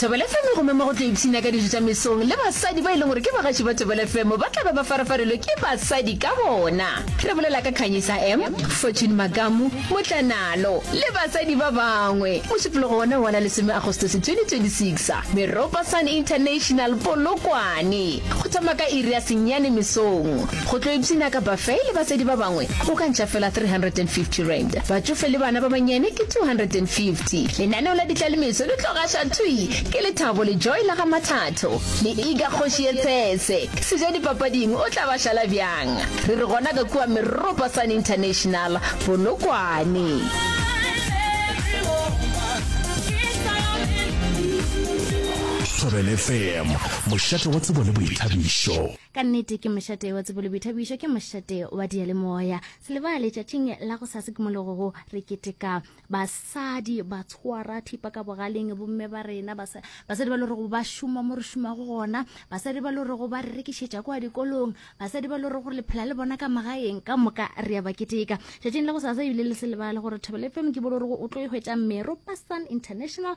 thobela fm gomme mo go tla ipshina ka dijo tša mesong le basadi ba e leng gore ke bagaši ba thobela fm ba tla be ba farafarelwe ke basadi ka bona re bolela ka khanyisa m fortune makamu motlanalo le basadi ba bangwe mošupologo wona wa la lesome agostosi 2026 meropa sun international polokwane go thoma ka iri ya senyane mesong Go tlo ipshina ka Buffet le batswadi ba bangwe go ka ntša fela R350. Batšofe le bana ba bannyane ke R250. Lenaneo la ditlalemetso le tlo gaša thwi ke Lethabo le Joy la ga Mathatho le Iga Kgoši ye Tshese. Sejadipapading o tla ba šala bjang? Re re gona ka kua Meropa Sun International, Polokwane. Thobela FM, mošate wa tsebo le boithabišo. ka nnete ke mošate wa tsebo le boithabišo ke mošate wa diyalemoya selebaa letšatšing la go sa sekimologo go re keteka basadi ba tshwara thipa ka bogaleng bomme ba rena basadi ba le gore go ba šoma mo re šomago gona basadi ba le gore go ba re rekišetša kwa dikolong basadi ba le gore gore le phela le bona ka magaeng ka moka re ya ba keteka tšatšing la go sa sa ebile le selebaa le gore thobele fm ke bolo gore o tlo e hwetša mero pasan international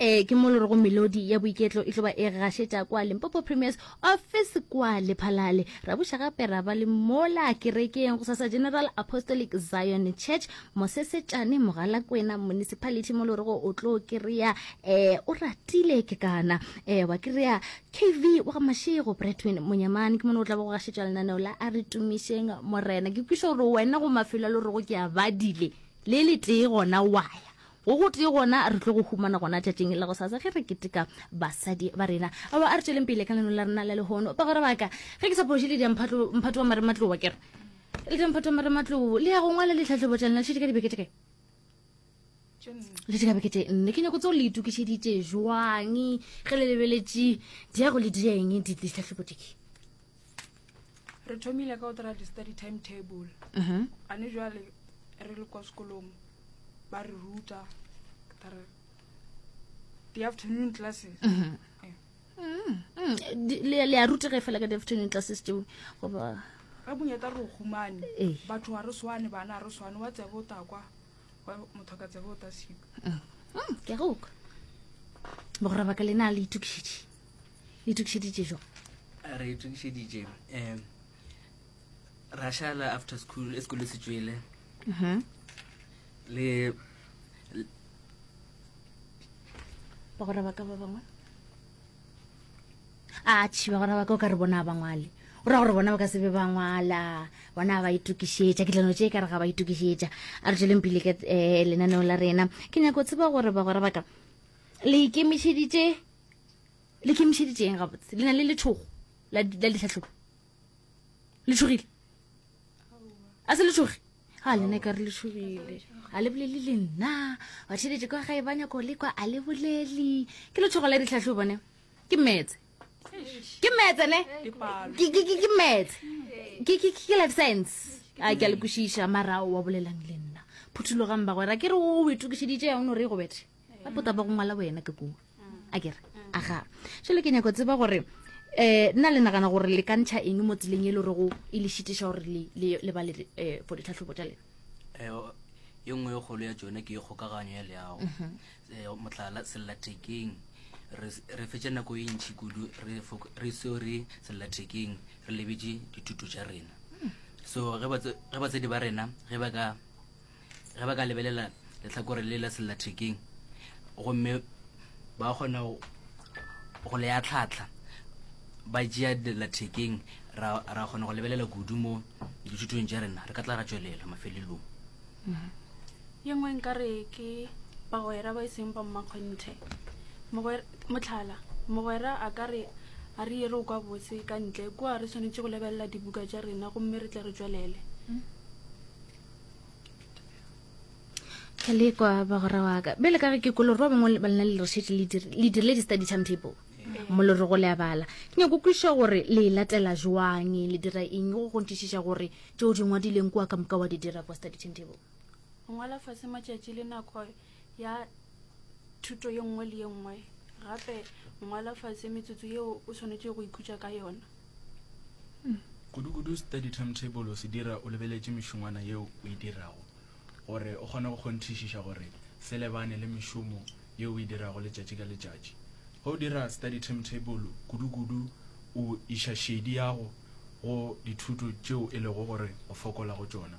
Ee, ke mo lorego melodi ya boiketlo e tlo ba e gašetša kwa Limpopo Premier's office kwa Lephalale. Ra buša gape ra ba le mola kerekeng go sasa General Apostolic Zion Church Mosesetšane Mogalakwena Municipality mo lorego o tlo kry-a eh, o ratile ke kana eh, wa kry-a KV wa ga Mašego Bretwin Monyamane ke mone o tla ba go gašetša lenaneo la a re tumišeng morena. Ke kwiša gore wena go mafelo a lorego ke a badile le le tee gona waya Go gotee gona re tlo go humana gona tšatšing la gosasa ge re keteka basadi ba rena. Aowa, a re tšweleng pele ka leno la rena la lehono. Bagwera ba ka, ge ke sa phoše le diamphatlo, mphato wa marematlou wa ke re, le diamphato wa marematlou, le ya go ngwala litlhahlobo tša lena, le šetše ka dibeke tše kae? Le šetše ka beke tše nne. Ke nyako tseo le itokišeditše bjang ge le lebeletše diago le dieng ditlhahlobo tše? re thomile ka go dira di-study time table mhm. ane jale re le kwa sekolong ba re ruta re di-afternoon classes mhm. eh. mm, mm. le a rutege fela ka di-afternoon classes teo goba re bonyeta re o humane eh. batho ga re swane bana ga re swane wa tsebe o takwa motho ka tsebe o ta siko mm, ke goka bogorabaka le na le itukišedi le tukišeditše jo re tukišeditše um ra šala after school e sekolo se tswele mhm. le ba gore ba ka ba bangwe a tšhi ba gore ba ka o ka re bona ba ngwale o ra gore bona ba ka sebe ba ngwala bona ba itokišetša ke tlano tše e ka re ga ba itokišetša a re tsweleng pele ka um eh, lenaneo la rena ke nyako tseba gore ba gore baka le ikemišeditše le kemišeditše eng gabotse le na le lethogo la ditlhatlhobo le tshogile a se le tshoge ga lena ka re le tshogile ga le bolele le nna ba theletše kwa gae ba nyako le kwa a le bolele ke lethogo la ditlhatlhobo bone ke metse ke metse ne ke metse ke life science a ke a le kwešiša marao wa bolelang le nna phuthulogang bagwera ke re o itokišeditše yang no re e go bethe ba pota ba go ngwala wena ke kua a kere aga jalo ke nyako tseba gore um nna le nagana gore le kantšha eng mo tseleng e le gore go e le šitiša gore le ba le um for ditlhatlhobo tša lena ye nngwe e kgolo ya tsone ke e kgokaganyo ya leago um motlhala sellathekeng re fetša nako e ntšhi kudu re seo re sellathekeng re lebetse dithuto tša rena so ge batsadi ba rena ge ba ka ge ba ka lebelela letlhakore le la sellathekeng gomme ba kgona go le ya tlhatlha ba jea dillathekeng ra ra kgona go lebelela kudu mo dithutong tša rena re ka tla ra tšwelela mafelelong mm-hmm. ye nngwe nka re ke bagwera ba e seng ba mmakgonthe motlhala mogwera a ka re a re yere o kwa botse ka ntle kua re tshwanetse go lebelela dibuka tša rena gomme re tle re tswelele mm. ka lekwa ba gore wa ka bele ka ge ke koloro ba bangwe ba lena le rešete le dirile di-study time people molore go le a bala ke nyako kweša gore le e latela jwang le dira eng go gontšišiša gore tšeo di ngwadileng kua ka moka wa di dira kwa study time table ngwala fase matšatši le nako ya thuto ye nngwe le ye nngwe gape ngwala fatshe metsotso yeo o swanetše go ikhutša ka yona kudukudu study timetable o se dira o lebeletše mešongwana yeo o e dirago gore o kgone go kgonthišiša gore se lebane le mešomo yeo o e dirago letšatši ka letšatši ge o dira study timetable kudukudu o iša šedi yago go dithuto tšeo e lego gore o fokola go tšona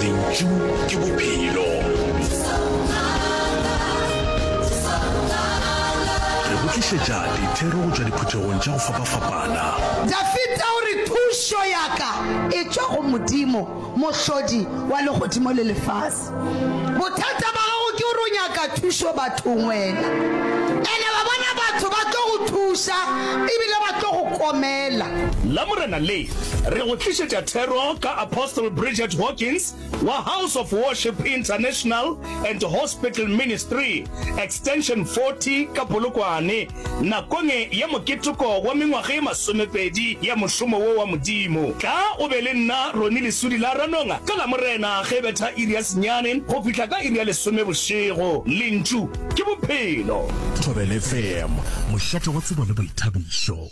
lentšu ke bophelo re go tlišetša dithero go tšwa diphuthegong tša go fapafapana Dafita o re, Thušo ya-ka e tšwa go Modimo, Mohlodi wa legodimo le lefase. Bothata ba gago ke gore o nyaka thušo bathong wena. And-e wa bona batho ba tlo go thuša ebile ba tlo go komela. Lamorena le, re go tlišetša thero ka Apostle Bridget Hawkins wa House of Worship International and Hospital Ministry, Extension 40 ka Polokwane. Nakong ya moketeko wa mengwaga ye masomepedi ya mošomo wo wa Modimo, tla o be le nna Ronnie Lesudi la Ranonga ka Lamorena ge e betha iri ya senyane go fihla ka iri ya lesome bošego. Lentšu ke Bophelo. Thobela FM, mošate wa tsebo le boithabišo.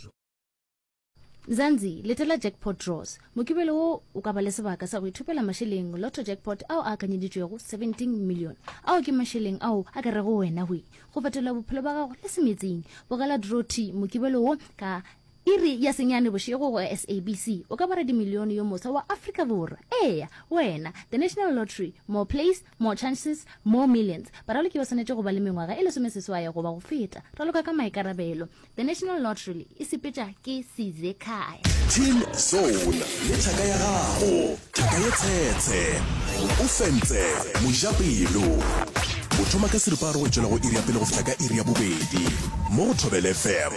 Mzanzi, letela Jackpot Draws. Mokibelo wo o ka ba le sebaka sa go ithopela mašeleng Lotto Jackpot ao a akanyeditšwego 17 million. Ao ke mašeleng ao a ka rego wena hwi go fetola bophelo ba gago le semetsing. Bogela Draw T mokibelo wo ka iri ya senyane bošego go SABC. O ka ba radimilione yo moswa wa Afrika Borwa. Eya, wena! The National Lottery, More Plays, More chances, more millions. Baraloki ba swanetše go ba le mengwaga e lesomeseswae goba go feta. Raloka ka maikarabelo. The National Lottery e sepetša ke size kae? Team Zone le thaka ya gago. Thaka ye tshetshe. O fentse mojapelo. O thoma ka seripa a re go tšwela go iri ya pele go fihla ka iri ya bobedi mo go Thobela FM.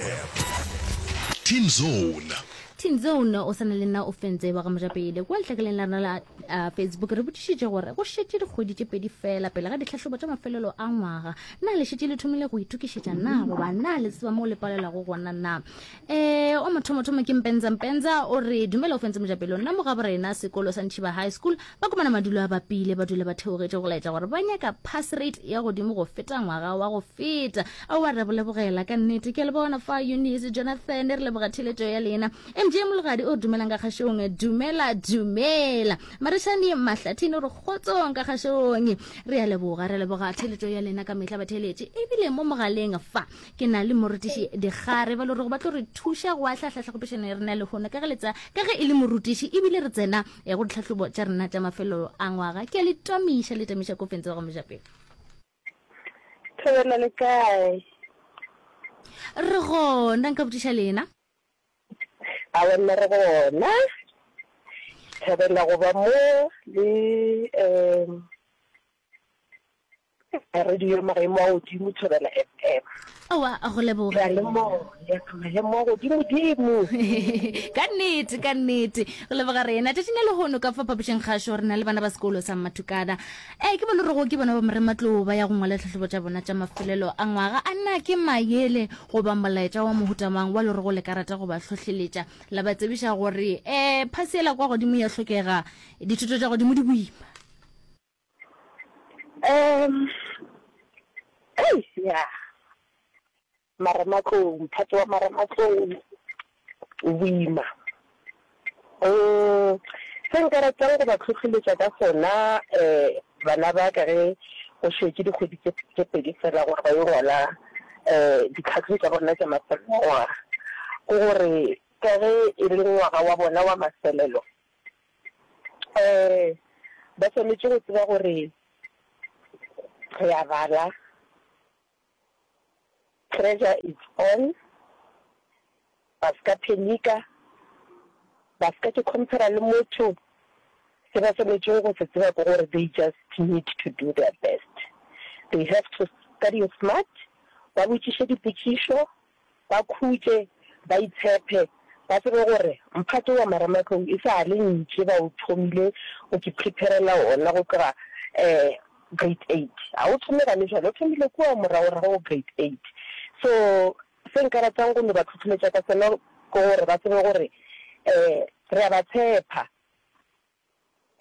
Team Zone. Team Zone o swana le nna o fentse wa ga mojapele kua lehlakeleng la rena la. a facebook re botšišitše gore go šetše dikgwedi tše pedi fela pele ga ditlhahlobo tša mafelelo a ngwaga na le šetše le thomile go itokišetša na goba na le tseba moo le palelwago gona na um o mothomothomo ke mpenza mpenza o re dumela o fentse mojapelo nna mo gabo rena sekolo sa ntšhiba high school ba komana madulo a bapile ba dula ba theogetše go laetša gore ba nyaka pass rate ya godimo go feta ngwaga wa go feta a wa re bolebogela ka nnete ke a le bona fa eunice jonathan re leboga theletšo ya lena MJ Mologadi o dumelang ka kgašong dumela dumela Marishane Mahlathini o re kgotsong ka kgašong re ya leboga re leboga theletšo ya lena ka mehla batheletše ebile mo mogaleng fa ke na le morutiši dikgare ba le gore go ba tlo re thuša go ahlahla tlhagopešano ya rena lehono ka ge letsa ka ge e le morutiši ebile re tsena eh, go ditlhahlobo tša rena tša mafelelo a ngwaga ke a le tamiša le tamiša kofentse wa ga mojapele Thobela le kae? Re gona, nka botiša lena? A wena re gona. Thabela go ba mo le um radio maemo a godimo Thobela FM. Aowa, a go leboga. Re a lemoga, re lemoga godimo dimo. Ka nnete, ka nnete. Go leboga rena. Tšatšing le lehono ka fa phapošeng kgašo re na le bana ba sekolo sa Mmathukana. Eh, ke bone rego ke bona ba Morematlou ba ya go ngwala tlhahlobo tša bona tša mafelelo a ngwaga. A na ke mayele goba molaetša wa mohuta mang wa lerego le ka rata go ba hlohleletša la ba tsebiša gore eh phasi yela kwa godimo ya hlokega, dithuto tša godimo di boima? Um, ei, ya, marematlou, mphato wa marematlou o boima. Um, se nka ratang go ba tlhotlheletša ka sona um bana ba ka ge go šetše dikgwedi tše pedi fela gore ba yo ngwala um ditlhahlo tša bona tša mafelelongwaga, ke gore ka ge e le ngwaga wa bona wa mafelelo, um ba swanetše go tseba gore re a bala, pressure is on, ba se ka phenika, ba se ka ke compare-ra le motho, se ba swanetšego go se tseba ke gore they just need to do their best, they have to study smart, ba botšiše dipotšišo, Ba khutše, ba itshephe, ba tsebe gore mphato wa marematlou e sa le ntše ba o thomile go ke preparela wona go tloga grade eight. Ga o thome gane jwale, o thomile kua moragorago go grade eight. So se nka ratang go no ba tlhohleletša ka sona ke gore ba tsebe gore re a ba tshepha.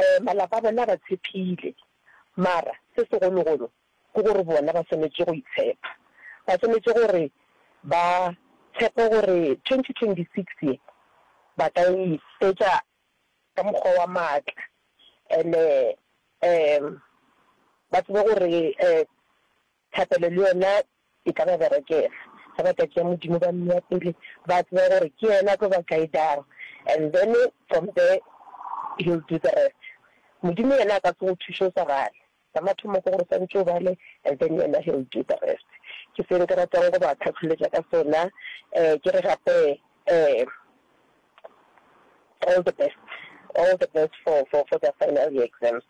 Ee, malapa a bona a ba tshepile, mara se segologolo ke gore bona ba swanetše go itshepa. Ba swanetše gore ba tshepe gore 2026 ye ba ka e fetša ka mokgwa wa maatla and-e um ba tsebe gore um Thapelo le yona e ka ba berekela ge ba ka tšea Modimo ba mmea pele, ba tseba gore ke yena a tlo ba guidang and then from there he'll do the rest. Modimo yena a ka se go thuše o sa bale, sa mathomo ke gore o swantše o bale and then yena he'll do the rest. Ke se nke ratago go ba kgakholetša ka sona, ke re gape All the best all the best for for for the final year exams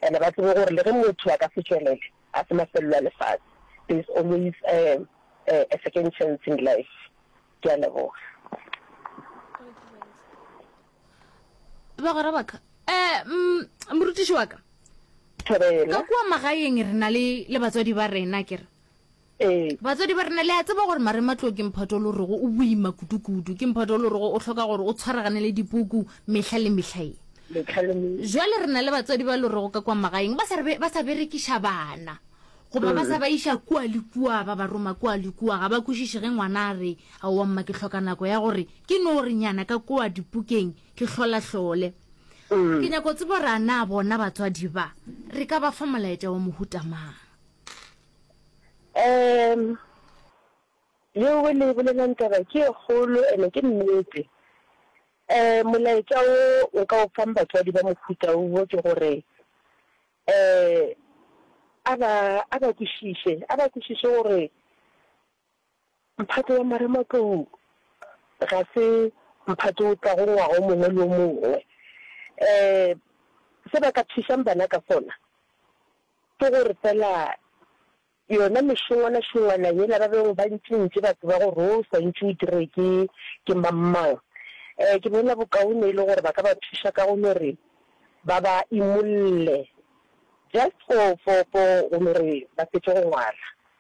and ba tsebe gore le ge motho a ka se tšwelele a se mafelelo a lefase there is always a, a, a second chance in life ke a leboga bagora baka eh mm, morutiši wa ka ka kua magaeng re na le le batswadi ba rena ke re Ee. Batswadi ba rena, le a tseba gore marematlou ke mphato o le gorego o boima kudu-kudu. Ke mphato o le gorego o hloka gore o tshwaragane le dipuku mehla le mehla ye. Mehla le me. Bjale re na le batswadi ba e le gorego ka kua magaeng ba sa re ba sa berekiša bana goba ba sa ba iša kua le kua, ba ba roma kua le kua. Ga ba kwešiše ge ngwana a re, Aowa mma, ke hloka nako ya gore ke no re nyana ka kua dipukeng ke hlolahlole. Ke nyaka go tseba gore a na bona batswadi ba re ka ba fa molaetša wa mohuta mang. Um, yeo o le bolelang taba ke e kgolo ene ke nnete. Um, molaetša wo nka o fang batswadi ba mohuta wo ke gore um a ba a ba kwešiše, a ba kwešiše gore Mphato wa marematlou ga se mphato o tlago ngwaga o mongwe le o mongwe. Se ba ka thušang bana ka sona ke gore fela yona mešongwana-šongwana yela ba bego ba ntši-ntši ba tseba gore wo o swantšwe o dirwe ke ke mang-mang, ke bona bokaone e le gore ba ka ba thuša ka go no re ba ba imolle just for go no re ba fetše go ngwala.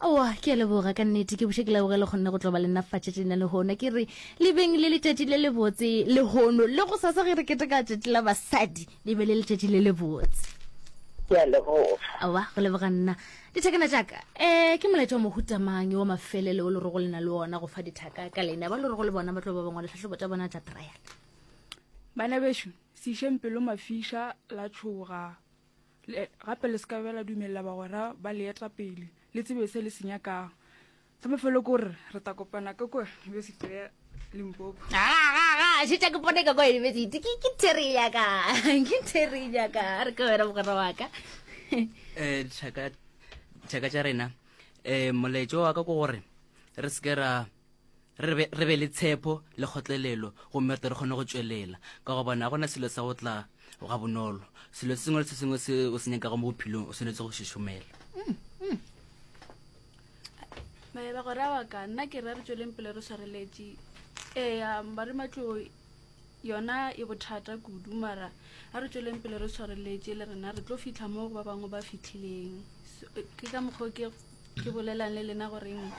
Aowa, ke a leboga ka nnete, ke buše ke leboge le kgonne go tlo ba le nna fatšatši lena lehono. Ke re le beng le letšatši le lebotse lehono, le go sasa ge re keteka tšatši la basadi le be le letšatši le lebotse. Ke a leboga. Aowa, go leboga nna. Dithakana tša ka, um ke molaetša wa mohuta mang yo wa mafelelo o le rego le na le wona go fa dithaka ka leina ba le rego le bona ba tlo ba bangwa dihlahlobo tša bona tša trial? Bana bešo, se išeng pelo mafiša la tšhoga. Le, gape le se ka bela dumelela bagwera ba le eta pele, le tsebe se le se nyakago. Sa mafelo ko re, re ta kopana ka kua University ya Limpopo. Ga, ga, ga, a šetša ke pone ka kua University. Ke, ke Terry ya ka, ke Terry ya ka, a re ke wena mogwera wa ka. Eh, tšhaka, tšhaka tša rena, eh, moletšo wa ka ke gore re se ke ra re be, re be le tshepo le kgotlelelo gomme re tle re kgone go tšwelela ka gobane ga gona selo sa go tla ga bonolo selo se sengwe le se sengwe se o se nyakago mo bophelong o tshwanetse go šešomela maeba gore a wa ka nna ke re a re tsweleng pele re swareletše ee ba re matloi yona e bothata kudu mara a re tsweleng pele re tshwareletše le rena re tlo fitlha mo go ba bangwe ba fitlhileng ke ka mokgwa ke ke bolelang le lena goreng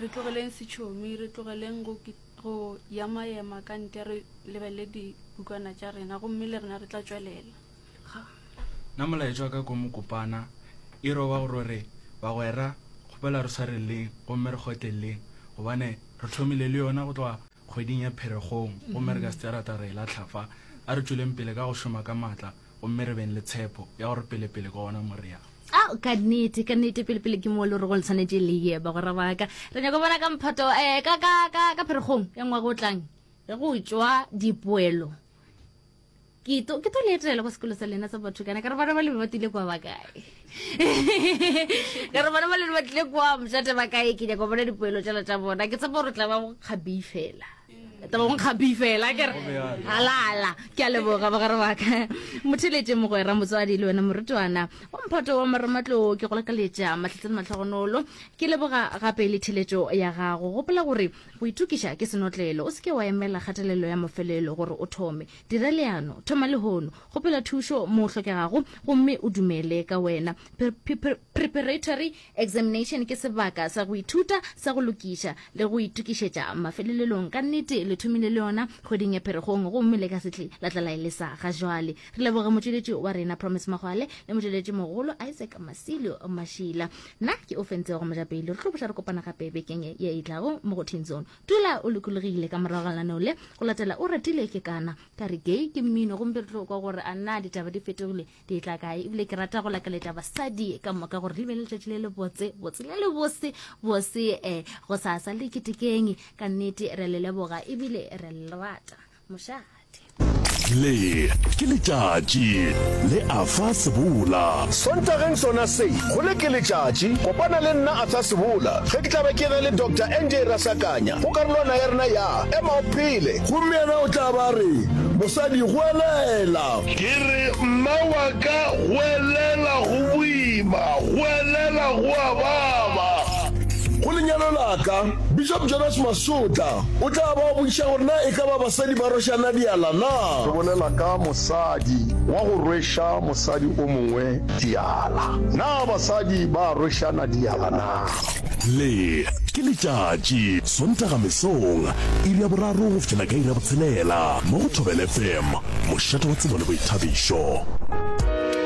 re tlogeleng setšhomi re tlogeleng go go yamayema ka ntle re lebelele dibukana tša rena gomme le rena re tla tswelela na molaetša wa ka ko mokopana e roba gore re bagwera kgopela re tshwareleng gomme re kgotleleleng gobane re tlhomile le yona go tloga kgweding ya Pheregong, gomme re ka se tsere taba re e lahla fa. A re tšweleng pele ka go šoma ka matla gomme re beng le tshepo ya gore pelepele ke gona mo re yang. A o ka nnete, ka nnete, pelepele ke mo le rego le tshwanetše le ye, bagwera ba ka. Re nyaka go bona ka mphato, eh, ka, ka, ka, ka Pheregong ya ngwaga o tlang, ge go tšwa dipoelo. ke to ke to le etela kwa sekolo sa lena sa batho kana ka re bana ba le ba tlile kwa ba kae ka re bana ba le ba tlile kwa mojate ba kae ke nyaka bona dipoelo tša tša bona ke tsa gore tla ba go kgabi fela tla ba go kgabi fela ke re halala ke a leboga ba gare baka motheletse mogwera motswadi le wena morutwana wa mphato wa maramatloo ke go lakaletša matlhatlhane matlhogonolo ke leboga gape le theletšo ya gago gopola gore Go itokiša ke senotlelo. O se ke wa emela kgatelelo ya mafelelo gore o thome. Dira leano. Thoma lehono. Kgopela thušo moo hlokegago gomme o dumele ka wena. Preparatory examination ke sebaka sa go ithuta sa go lokiša le go itokišetša mafelelelong. Ka nnete le thomile le yona kgweding ya Pherekgong gomme le ka se tle la tla la e lesa ga jwale. Re leboga motšweletši wa rena Promise Magwale le motšweletšimogolo Isaac Masilio Mashila. Nna ke Ofentšego Mojapele. Re tlo boša re kopana gape bekeng e e tlago mo go Teen Zone. Dula o lokologile ka morago ga laneo le go latela o ratile ke kana ka re gay ke mmino gompe re tlo kwa gore a na ditaba di fetogile di tla kae ebile ke rata go lakaletša basadi ka moka gore le be le letšatši le le botse botse le le bose bose um go sasa le ketekeng ka nnete re le leboga ebile re le rata mošate. Le ke letšatši le Arthur Sebola. Sontageng sona se, go le ke letšatši, kopana le nna Arthur Sebola ge ke tla be ke ge le Doctor NJ Rasakanya go karolwana ya rena ya Ema o Phele. Gomme yena o tla ba a re, Mosadi, goelela. Ke re, Mma wa ka, goelela, go boima, goelela, go a baba. Go lenyalo la ka, Bishop Jonas Masotla o tla ba a botšiša gore na e ka ba basadi ba rweša nadiala na. Re bolela ka mosadi wa go rweša mosadi o mongwe diala. Na basadi ba a rwešana diala na? Le ke letšatši, Sontaga mesong, iri ya boraro go fihlela ka iri ya botshelela mo go Thobela FM, mošate wa tsebo le boithabišo.